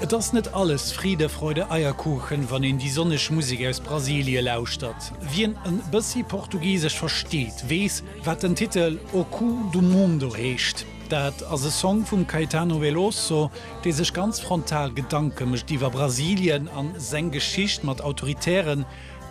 Et ass net alles Friede, Freude, Eierkuchen, wann een déi sonneg Musek aus Brasilie lauschtert. Wien en bëssi Portugisesch versteet, weess, wat den Titel O Cu do Mundo heescht. Dat ass e Song vum Caetano Veloso, dee sech ganz frontal Gedanke mécht iwwer Brasilien a seng Geschicht mat autoritären,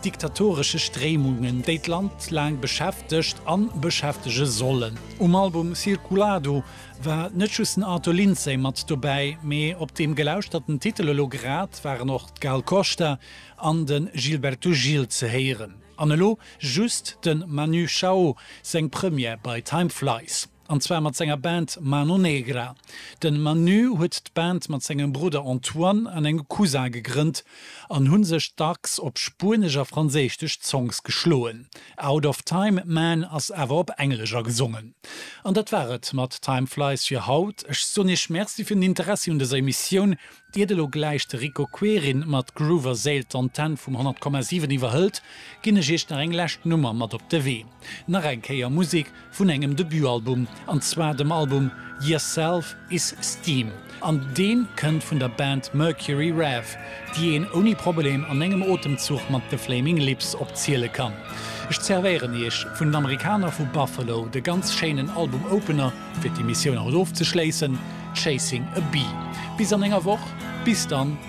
diktatoresche Stréimungen, déi d'Land laang beschäftegt a beschäftege sollen. Um Album Circulado War net just den Arthur Lindsay mat dobäi, mee op deem gelauschterte Titel elo grad waren och d'Gal Costa an de Gilberto Gil ze héieren. An elo just de Manu Chao seng Première bei Time Flies. An zwar mat senger Band Mano Negra. De Manu huet d'Band mat sengem Brudder Antoine an engem Cousin gegrënnt an hu sech dacks op spuenesch a franséistesch Songs geschloen. Out of Time, Man ass awer op Englesch a gesongen. An dat war et mat Time Flies fir haut. Ech soen Iech Merci fir den Interessi un dëser Emissioun. Iert elo gläich de Rico Querin mat Groove a Séil d'Antenn vum 100,7 iwwerhëlt, ginn ech Iech nach eng lescht Nummer mat op de Wee. Nach eng Kéier Musik vun engem Debutalbum, an zwar dem Album Yer Self Is Steam, an dee kënnt vun der Band Mercury Rev, déi een ouni Problem an engem Otemzuch mat The Flaming Lips opziele kann. Ech zervéieren iech vun den Amerikaner vu Buffalo de ganz schéinen Album-Opener, fir d'Emissioun haut ofzeschléissen, Chasing a Bee. Bis an enger Woch, bis dann!